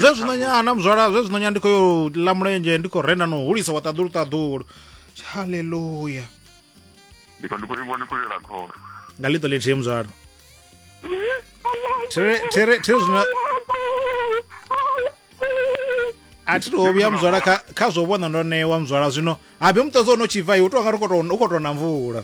zwe zwino nyana muzwala zwe zwino nyana ndi khou yo ḽa mulenzhe ndi khou renda no hulisa wa ṱaḓulu ṱaḓulu halleluya ndi khou ivhona khou yela khoro nga ḽiṱo ḽithihi muzwala thiri zwino a thi to vhuya muzwala kha zwo vhona ndo ṋewa muzwala zwino habe muṱodzo o no tshibva i u tou nga ri u khou tou na mvula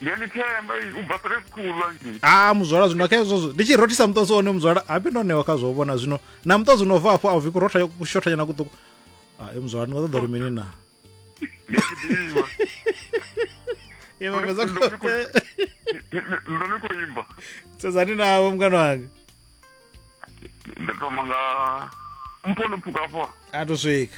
ndiyalithemba ubva kule kukhulu angithi ah muzwala zwino khe zwozwo ndi tshi rothisa muṱosi one muzwala hapi ndo ṋewa kha zwo vhona zwino na muṱosi no bva afho a uvi kurotha kushothanyana kuṱuku ah, e muzwala ni nga ṱoḓa uri mini na ndoni kuimba tsedzani navo mukana wange ndatoma nga mpono pfuka afho a to swika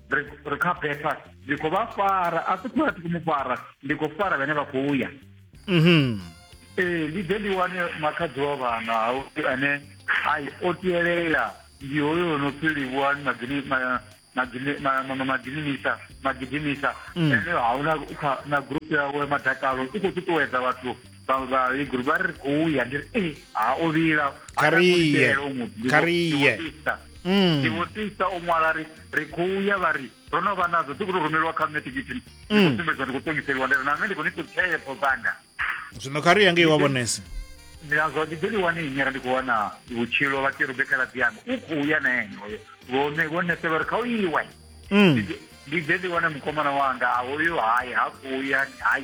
ri ri kha betha ndi khou vha fara a si khou ya mu fara ndi khou fara vhane vha khou ya mhm. ee ndi ḓe ndi wane makhadzi wa vhana ane ai o tielela ndi hoyo no pfi livhuwani magidimisa magidimisa mm. ene hauna na group yawe madakalo i khou ṱuṱuwedza vhathu vhahegulu vha ri khou ya ndi ri ee ha o vhila Kariye, kariye. Mm. ndivhotisa o ṅwala ri ri khou ya vha ri ro no vha nadzo dzi khou to rumeliwa kha nṋe tikiti ndi Mm. khou sumbedzwa ndi khou ṱongiseliwa ndi ri na nṋe ndi khou ni ṱutshepho dzanga zwino kha ri ya ngei wa vhonesa ndi nazwa ndi ḓo ḽi wane inyera ndi khou wana vhutshilo vha kerube khaladzi yanga u khou ya na ene hoyo vhone vho nesela uri kha u iwe Mm. ndi ḓe ndi wane mukomana wanga a hoyo hai ha khou ya hai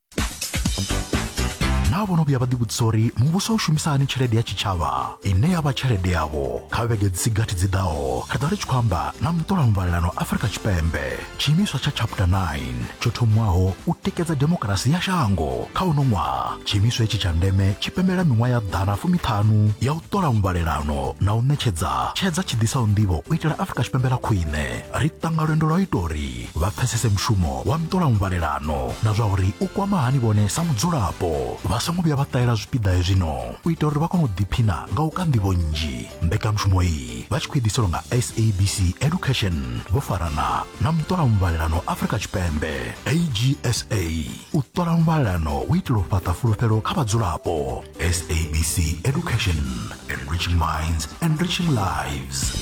naa vhono vhuya vha ḓivhudzisa uri muvhuso u shumisa hani tshelede ya tshitshavha ine ya vha tshelede yavho kha vhege dzi si gathi dzi ḓaho ri ḓo ri tshi khou amba na muṱola muvhalelano afurika tshipembe tshiimiswa tsha chapter 9 tsho thomiwaho u tikedza demokarasi ya shango kha uno ṅwaha tshiimiswa hetshi tsha ndeme tshi pembela miṅwaha ya ḓana fumiṱhanu ya u ṱola muvhalelano na u ṋetshedza tshedza tshi ḓisaho nḓivho u itela afurika tshipembe ḽa khwine ri ṱanga lwendo lwa u ita uri vha pfesese mushumo wa ntolamuvhalelano na zwa uri u kwama hani vhone sa mudzulapo vha songo vhuya vha ṱahela zwipiḓa hezwino u ita uri vha kone u ḓiphina nga u ka nḓivho nnzhi mbekanyamushumo iyi vha tshi khou iḓiselwa nga sabc education vho farana na muṱolamuvhalelano afrika tshipembe agsa u ṱola muvhalelano u itela u fhaṱa fulufhelo kha vhadzulapo sabc education enriching minds enriching lives